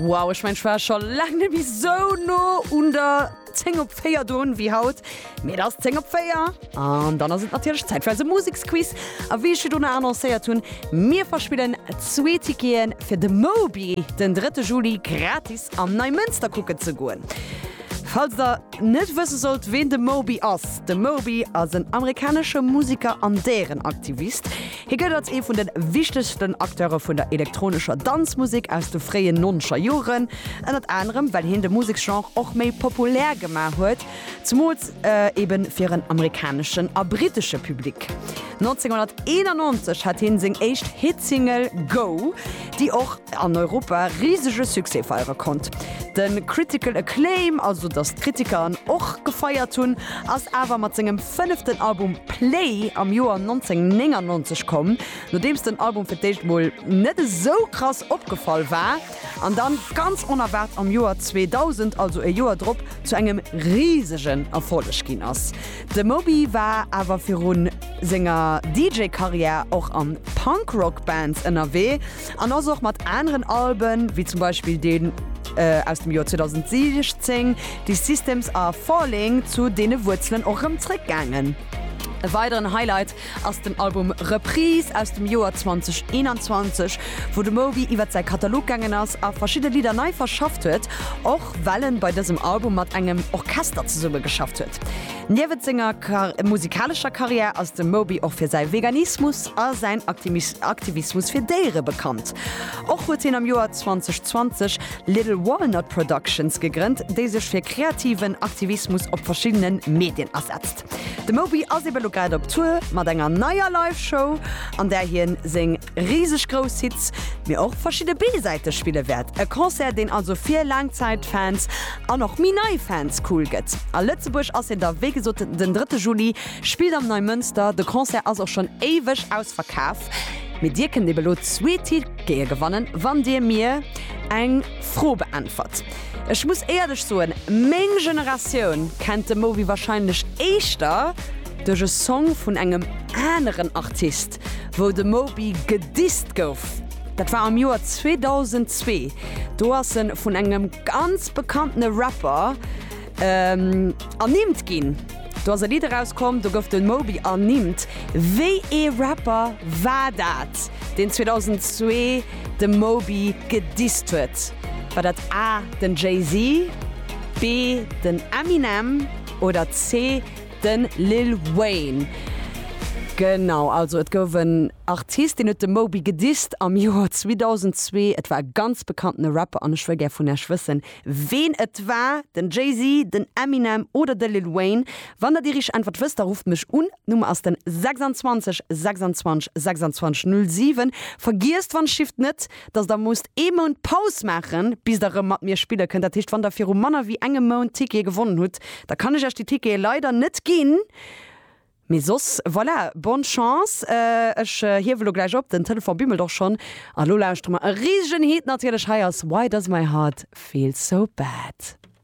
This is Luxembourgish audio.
Wow, ech mengen ech war scho laang net méi sou no un der 10 op 4 drun wéi haut. Mee et ass 10 op 4 an dann ass et natierlech Zäit fir eise Museksquiz. A wéi ech virdrun annoncéiert hunn, mir verspillen zwee Tickete fir de Moby den 3 Juli gratis an Neimënster kucken ze goen. Falls der net wësse sollt ween de Moby ass, de Moby ass en amerikanesche Museker an Déierenaktivist. Hie gëllt als ee vun de wichtegsten Acteure vun der elektronescher Danzmusek aus de fréien nonzeger Joren, ënnert anerem well hien de Museksgenre och méi populär gemaach huet, zemools ebe fir en amerikaneschen a brittesche Public. 1991 hat hien seng éischt Hitsingle Go! déi och an Europa risege Succès feiere konnt. De critical acclaim, also datt d'Kritiker en och gefeiert hunn, ass awer mat sengem fënneften Album Play am Joer 1999 komm, nodeems den Album fir d'éischt mol net esou krass opgefall war, an dann ganz onerwaart am Joer 2000, also e Joer drop, zu engem risegen Erfolleg ginn ass. De Moby war awer viru senger DJ-Karriär och a Punk-Rock-Bands ënnerwee an ass och mat aneren Alben, wéi zum Beispill deen aus dem Joer 2016, These Systems Are Falling, zu deene Wuerzelen och erëm zeréckgaangen. E weideren Highlight ass den Album Reprise aus dem Joer 2021, wou de Moby iwwer säi Katalog gaangen ass a verschidde Lidder nei verschafft huet, och well en bei dësem Album mat engem Orchester zesumme geschafft huet. Niewent senger musikalescher Karriär ass de Moby och fir säi Veganismus a säin Aktivismus fir Déiere bekannt. Och huet hien am Joer 2020 Little Walnut Productions gegrënnt, déi sech fir kreativen Aktivismus op verschiddene Medien asetzt. De Moby ass ebe lo grad op Tour mat enger neier Live-Show, an där hien seng riseg grouss Hits, mee och verschidde B-Säite spille wäert. E Concert, deen also fir Laangzäit-Fans an och méi nei Fans cool gëtt. A Lëtzebuerg ass hien da wéi gesot den drëtte Juli, spillt am Neimënster. De Concert ass och schonn éiweg ausverkaf, mee Dir kënnt ebe lo zwee Tickete gewannen, wann Dir mir eng Fro beäntwert. Ech muss éierlech soen, meng Generatioun kennt de Moby wahrscheinlech éischter duerch e Song vun engem aneren Artist, wou de Moby gedisst gouf. Dat war am Joer 2002, do ass e vun engem ganz bekanntene Rapper, Ernimmt ginn. Do ass e Lidd erauskomm, do gouf de Moby ernimmt. Wéi ee Rapper war dat, deen 2002 de Moby gedisst huet? War dat A, den Jay-Z, B, den Eminem oder C, de Lil Wayne? Genau, also et gouf en Artist, deen huet de Moby gedisst am Joer 2002. Et war e ganz bekanntene Rapper an ech wëll gär vun iech wëssen, Ween et war, den Jay-Z, den Eminem oder de Lil Wayne? Wann der déi richteg Äntwert wësst, da rufft mech un. D'Nummer ass den 26 26 26 07. Vergiesst wann Shift net, dass der musst ee Mount Paus maachen, bis der rëm mat mir spille kënnt. Dat heescht, wann der viru manner wéi engem Mount Tickete gewonnen hutt, da kann ech iech déi Tickete leider net ginn. Mee soss, voilà, bonne chance. Ech hiewe lo gläich op, den Telefon bimmelt och schonn. A lo lauschtere mer e risegen Hit natierlech. Hei ass Why Does My Heart Feel So Bad.